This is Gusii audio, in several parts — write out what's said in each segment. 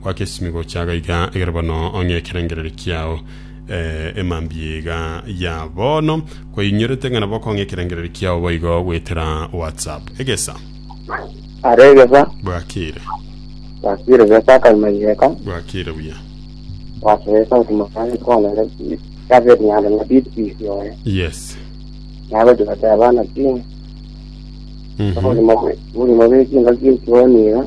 Goaka esimi gocha agaiga egere bono ong'e ekerengererio kiao emambia iga ya bono. Kwainyorete ng'a nabo okong'a ekerengererio kiao boigo goetera WhatsApp. Egesa. Are egesa. Bwakire. Bwakire gesa akagima yeka. Bwakire buya. Bwakire gesa otuma kare kona na David Nyanda na Big Peace oye. Yes. Nabo tibate abana timu. Mhm. Obulimo bw'ekinga kintu oniga.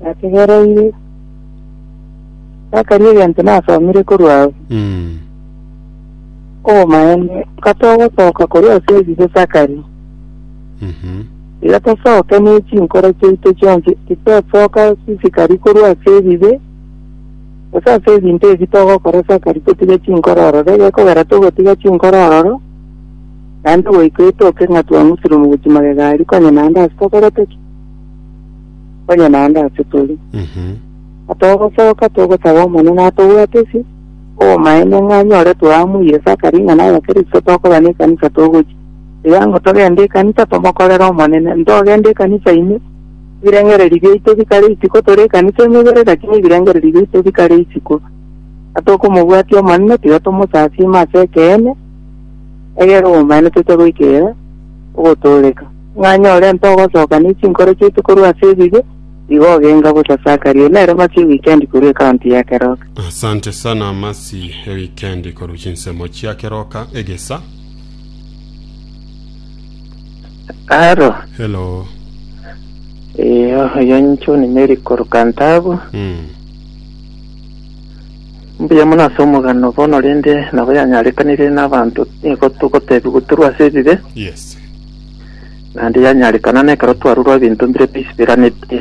Nategereire. Nakaria egento nasomire korwa ao. Mm. Obomaene, katogosoka korwa ase ebibe sakari, Mhm. iga tosoke ne chinkoro chiaito chionsi titosoka sisikari korwa ase ebibe, gose ase ebinto ebi togokora sakari totige chinkoro ororo, egekogera togotiga chinkoro ororo, naende goika etoke ng'a twang'usire omogochi magega aria, konya naende ase tokorete ki? onye naende ase tore. Mhm. Na togosoka togosaba Omonene atobwatisi obomaene ng'a anyore twaamwa Isaka ring'ana ya Kristo tokoba nekanisa togochia. Ekiagera togende ekanisa tomokorere Omonene, ntogende ekanisa ime, ebirengererio biaito bikare isiko, tore ekanisa emebere lakini ebirengererio biaito bikare isiko. Na tokomobwatia Omonene tiga tomosasiima ase ekeene, egere obomaene toche goika ere ogotooreka. Mwanyora ento ogosoka ne chinkoro chiaito korwa ase ebibe, igo ogenga bosa Sakaria. Nere masi ewikendi korwa ekaunti ya Keroka. Asante sana Masi ewikendi korwa chinsemo chia Keroka egesa. Haro. Hello. Eh, oyo inche ni Mary korwa Kantabu. Mm. Mbuya mono ase omogano bono rende nabo yanyarekanire n'abanto nigo togotebiwa torwa ase ebibe. Yes. Naende yanyarekana nekero twarurwa ebinto mbire bisiberaneti,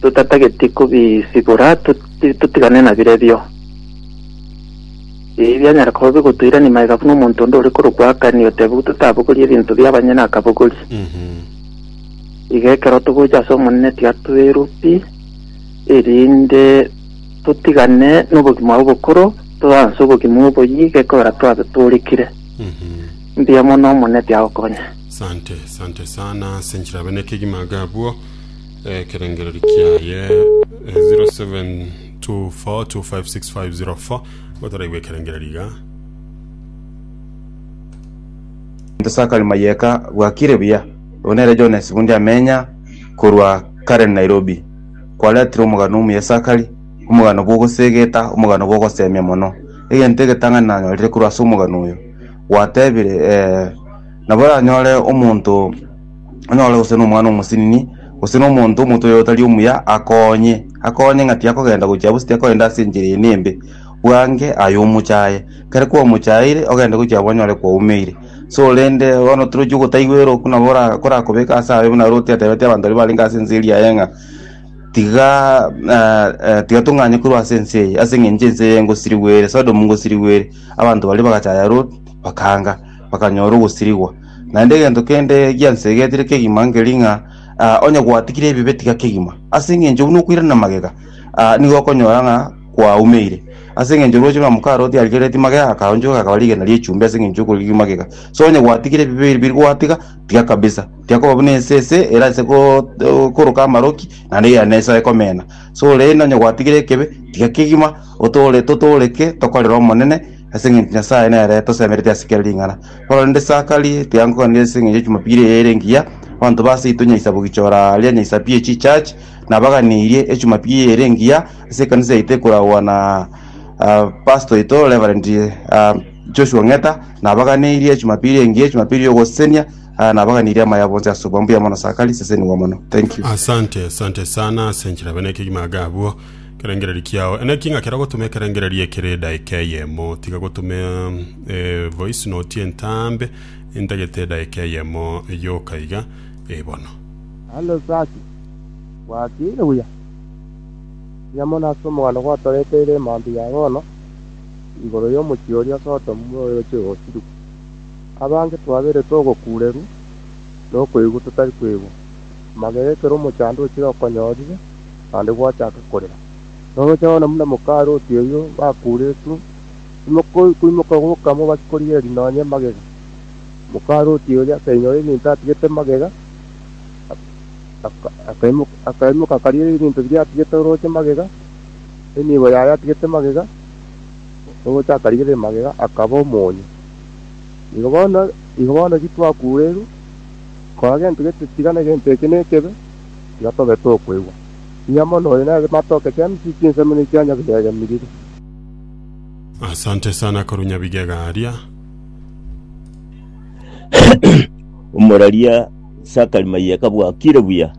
totatageti kobisibora totigane nabirebio. Ebi bianyara koba bigotoirania maega buna omonto onde ore korokwa Akani otebigwe totabogorie ebinto bi'abanyene akabogori. Iga ekero togocha ase Omonene tiga toirwe pi, erinde totigane nobogima obokoro, toanse obogima oboyia iga ekogera twabe toorekire. Mbuya mono Omoneti agokonye. Sante, sante sana ase nchirabe na ekegima iga abwo eh, ekerengereri kiaye eh, 0724256504 gotoraigwe ekerengereri iga Into Sakali Mayeka bwakire buya. Oyo nere John Sibundi amenya korwa Karen Nairobi. Kwaretire omogano omuya Sakali, omogano bw'ogosegeta, omogano bw'ogosemia mono. Egento egetang'ani nanyorire korwa ase omogano oyo, gwatebire, ee, nabo oranyore omonto onyore gose nomwana omosinini, gose na omonto omonto oyo otari omuya akonye, akonye ng'a tiyakogenda gochia bosi tiyakogenda ase enchera eye embe, bwange aye omochaye, ekero kwamochaeire ogende gochia abwo onyore kwaumeire. So rende bono torochi ogotaigwa ere okwo nabo ora korakobeka ase aye buna Loti atebete abanto baria barenge ase ense eria yaye ng'a tiga tiga tong'anye korwa ase ense eye ase eng'encho ense eye ngosirigwere, Sodomu ngosirigwere. Abanto baria bagachaya Ruth, bakaanga, bakanyora ogosirigwa. Naende egento kende giansegetire kegima nkeri ng'a ah, onye gwatigire ebibe tiga kegima. Ase engencho buna okoirana magega, ah, nigo okonyora ng'a kwaumeire. Ase engencho roche buna moka Ruth arigeretie magega, akaonchoka akaba rigena ri'echumbi ase engencho y'okorigia magega. So onye gwatigire ebibe ebi gwatiga, tiga kabisa. Tiakoba buna ense ese erase go- go- koroka amaroki, naende yane esoe komena. So rende onye gwatigire ekebe, tiga kegima, Otoore totooreke tokorere Omonene, ase engencho Nyasae nere tosemeretie ase kera ring'ana. Korende Sakari tiankoganire ase engencho y'echimopira eye ere engiya, abanto ba seito nyaisa bogichora aria nyaisa pi echi church, nabaganirie echimopira eye ere engiya ase ekanisa yaito ekoragwa na pastor oito Reverend Joshua Ng'eta, nabaganirie echimopira eye engiya, echimopira y'ogosesenia, nabaganirie amaya bonsi ase obwango. Mbuya mono Sakari, sesenigwa mono. Thank you. Asante, asante sana ase enchera bene ekegima iga abwo. Kerengererio kiao enaki ng'a kero gotuma ekerengererio ekere edaika eyemo, tiga gotuma evoice note entambe entagete edaika eyemo yoka iga. Ee bono. Naende osasie gwakiire buya, tiga mono ase omoganda gwatoreteire emantu ya bono igoro y'omochie oria Sodomu bw'oroche gosiru. Abange twabeire togokuurerwa na okoigwa totari koigwa, amagega ekero omochando ochire okonyorire, naende gwachaka korera. Roche nonya buna mokaroti oyio bakuretwe, timokoimoka goka mobasi korigereria nonya emagega. Mokaroti oria akainyora ebinto atigete magega, akaimoka akarigereria ebinto biria atigete oroche magega, enibo yaye atigete magega, oroche akarigereria magega akaba omonyo. Igo bono, igo bono eki twakureirwe, kora gento gete, tigana gento eke nekebe. tiga tobe tokoigwa. Ng'ia mono oyo nere matoke kiamisiri chinsemo ne chia nyabigega miriri. Asante sana korwa nyabigega aria. Omoraria Zachary Maiyeka bwakire buya.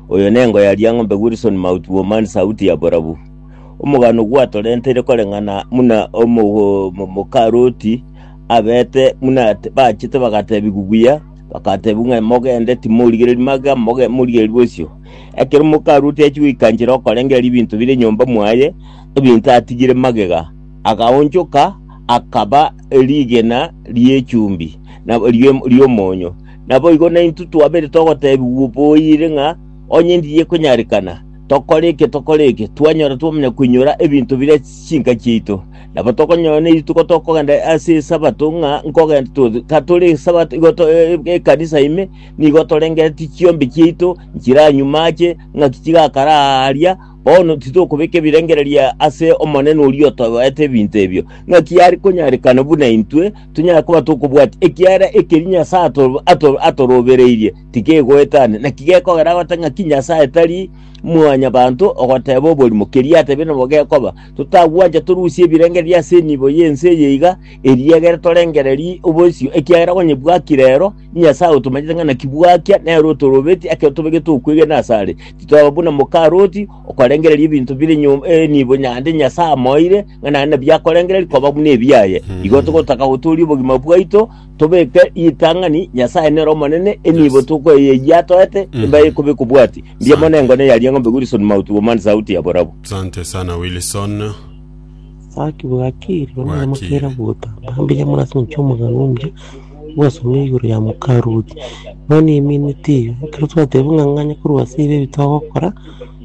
Oyo nengo ya Liang'ombe Wilson Mauti Womani Sauti ya Borabu. Omogano gwatorenteire koreng'ana muna omo- mo- mokaroti abete muna ate- bachete bagatebigu buya Bakateebia ng'a, Mogende, timorigereria magega, moge, morigererie bosio. Ekero mokarue otachia goika nchera okorengereria ebinto bire nyomba mwaye, ebinto atigire magega, agaonchoka, akaba rigena ri'echumbi, na rie- ri'omonyo. Naboigo naintwe twabere togoteebigwa boiire ng'a, Onye ndiye konyarekana, tokore eke, tokore eke, twanyora twamanya koinyora ebinto bire chinka chiaito. Nabo tokonyora nerituko tokogenda ase esabato ng'a nkogenda to- tatore esabato igo to- e- e- ekanisa ime nigo torengeretie chiombe chiaito nchiranyuma ache ng'aki chigakara aaria bono titokobeka ebirengererio ase Omonene oria otobaete ebinto ebio. Ng'aki are konyarekana buna intwe tonyare koba tokobwati ekiagera ekeri Nyasae ato- ato- atorobereirie tikegoetania. Naki gekogera gote ng'aki Nyasae tari mwanyabanto ogoteba oborimo keria atebire nabo gekoba, Totagwancha torusie ebirengererio ase enibo y'ense eye iga, erio egere torengererie obosio, ekiagera onye bwaki rero, Nyasae otomanyete ng'a naki bwakia nere otorobetie ekero tobegete okwegena asare. Titoba buna moka Loti, okorengereria ebinto bire nyom- eh, enibo nyande Nyasae amoeire, ng'a naende nabio akorengereria koba buna ebiaye. Igo togotaka gotooria obogima bwaito, Tobeke ritang'ani Nyasae nere omonene, enibo tokoeya eyio atoete, embaye ekobe ekobwati. Mbuya mono engone yaria eng'ombe Wilson Mauti Woman Sauti ya Borabu. Sante sana Wilson. Saki bwakire buna Bwakire. mokera gotamba mbuya mono ase omochie omogano omuya gwasomire igoro ya mokaruoti. Mani emineti eye ekero twateba ng'a ng'anya korwa ase ibi ebi twagokora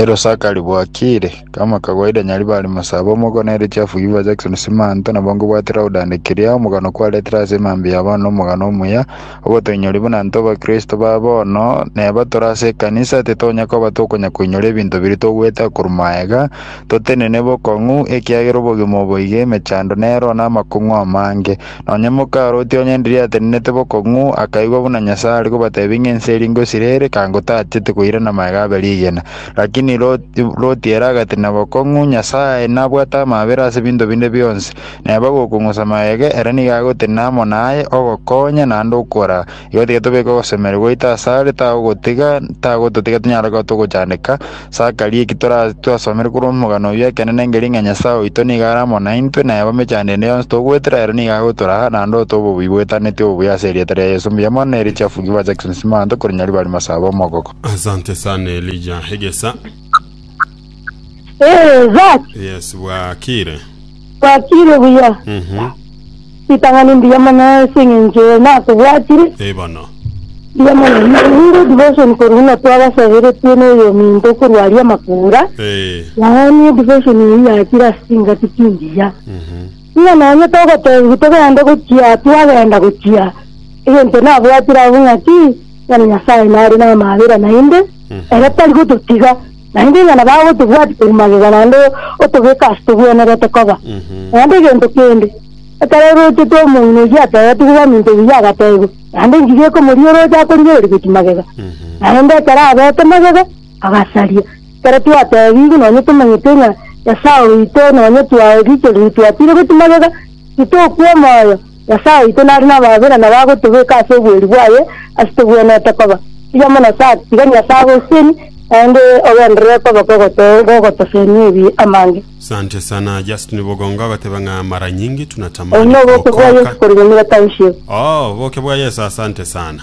Erosaka ribwakire, kama kawaida nyaribari masaba omoko na erichafu Yuva Jackson Simanto nabo nkobwatera godandekeria omogano kwaretire ase emambia ya bono omogano omuya ogotoinyori buna ntoba kristo ba bono neba tore ase ekanisa titonya koba tokonya koinyora ebinto biri togwete akoru maega totenene bokong'u ekiagera obogima oboige emechando nero na amakong'u amange Nonya mokarotie onye ndirie atenenete bokong'u akaigwa buna Nyasae are kobatebia ng'a ense eri ngosira ere, kangotacheti koirana magega abe rigena. Lakini Loti Loti ere agatenena bokong'u, Nyasae nabwate amaabera ase binto binde bionsi, neba gokong'usa magega, ere nigo agotenena amo naye, ogokonya, naende okora, Igo tiga tobeke ogosemeria gwaito asare, tagogotiga, tagototiga tonyare koba togochandeka, sakaria eki tora- twasomire korwa omogano oyio ekenene engeria ng'a Nyasae oito nigo are amo naintwe, na eba emechando ende yonsi togoetera ere nigo agotoraa, na ndoe tobe obuya bwetaneti obuya ase erieta ria Yeso. Mbuya mono na eria chiafuki ba Jackson Simanto korinyari bari masaaba omogoko. Asante sana Elijah Egesa. Ee, Zach, Yes, bwakire. Bwatire buya. Mhm. Ritang'ani mbuya mono ase eng'encho eye nakobwatire. Ee bono. Mbuya mono. Naende devotion korwa buna twabasaberetie na oyominto korwa aria Makura. Ee. Yaani edivotion eyio yachire ase chingaki chimbuya. Mhm. Ng'a nonye togotebiwa togende gochia twagenda gochia egento nabwatire abwo ng'aki, ng'a Nyasaye nare namabera naende, Mhm. ere tari gototiga. Naende onye nabao otobwati koria magega naende otobeke ase togwenerete koba naende egento kende, ekero orochete omong'ina oyio atebetigwe baminto buya agateebwa, naende engiga ekomoria ore oche akorigereria gochia magega. Naende ekero abeete magega, agasaria. Ekero twateebigwe nonye tomanyete ng'a Nyasae oito nonye twae riichoro riria twatiire gochia magega, titokwaa omoyo, Nyasae oito nare nabaabere na nabo agotobeka ase oboeri bwaye ase togwenerete koba. Tiga Amonose ati, Tiga Nyasae agoserie, naende ogenderere koba kogotosenia ebibe amange. Sante sana Justin Bogonga ogoteba ng'a mara nyingi Obonene tunatamani oboke bwa Yesu kookoka. korwa nyomera tanshibo. Oh, oboke bwa Yesu asante sana.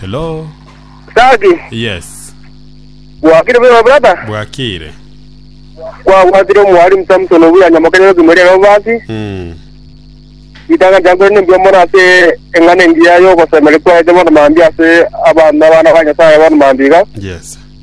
Hello. Saki, Yes. gwakire bwema brother, Bwakire. gwagwatire omwalimu Samson obuya nyamokenere kimori ero basi, Mm. itanga jangore nembia mono ase eng'ana engiya yogosemeri kwaete bono mambia ase abanto abana ba Nyasaye bono mambiga. Yes.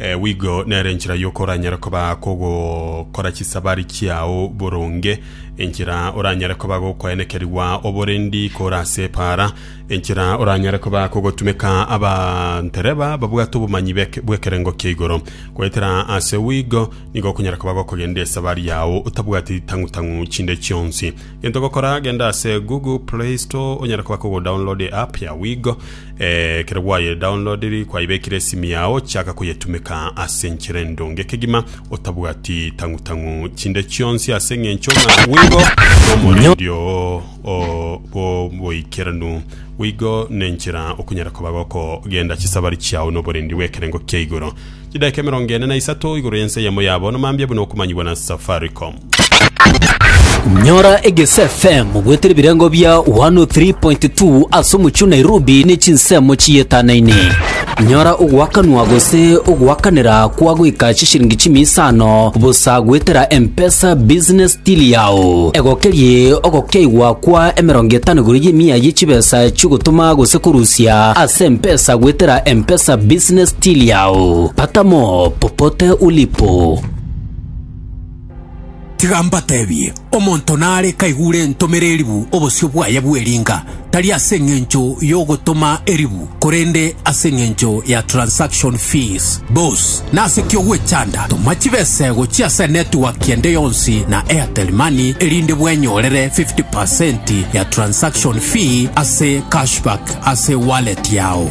Ee, wigo nere enchera y'okoranyare koba kogokora chisabari chiao boronge, enchera oranyare koba gokoenekerigwa oborendi kore ase epaara, enchera oranyare koba kogotumeka abantereba babwate obomanyi bek- bw'ekerengo kia igoro. Goetera ase wigo nigo okonyara koba gokogenda esabari yao otabwati tang'u-tang'u chinde chionsi. Gento gokora genda ase Google Play Store onyare koba kogo download app ya Wigo eh, ekero gwaye downloadiri kwaibekire esimi yao chaka koyetumeka ase enchera endonge kegima otabwati tang'u tang'u chinde chionsi ase eng'encho ng'a Wigo nomorendio o- bo- boikeranu Wigo nenchera okunyara koba goko genda chisabari chiao noborendi bw'ekerengo kia igoro chidaka emerongo ene na isato igoro y'ense yamo yabo nomambia buna okomanyigwa na Safaricom Nyora Egese FM bwete ebirengo bia 103.2 ase omochie o Nairobi ne chinsemo chiyetanane. Nyora ogoakanwa gose ogoakanera kwa goika chishiringi chimia isano bosa goetera M-Pesa business till yao. Egokerie ogokeigwa kwa emerongo etano igoro y'emia ye chibesa chigotoma gose korusia ase M-Pesa goetera M-Pesa business till yao. Pata mo popote ulipo. Tiga mbatebie, omonto nare kaigure entomere eribu obosio bwaye bw'eringa, tari ase engencho y'ogotoma eribu, korende ase engencho ya transaction fees. Bos, nase ki ogwechanda? Toma chibesego chia ase network ende yonsi na Airtel Money erinde bwenyorere 50% ya transaction fee ase cashback ase wallet yao.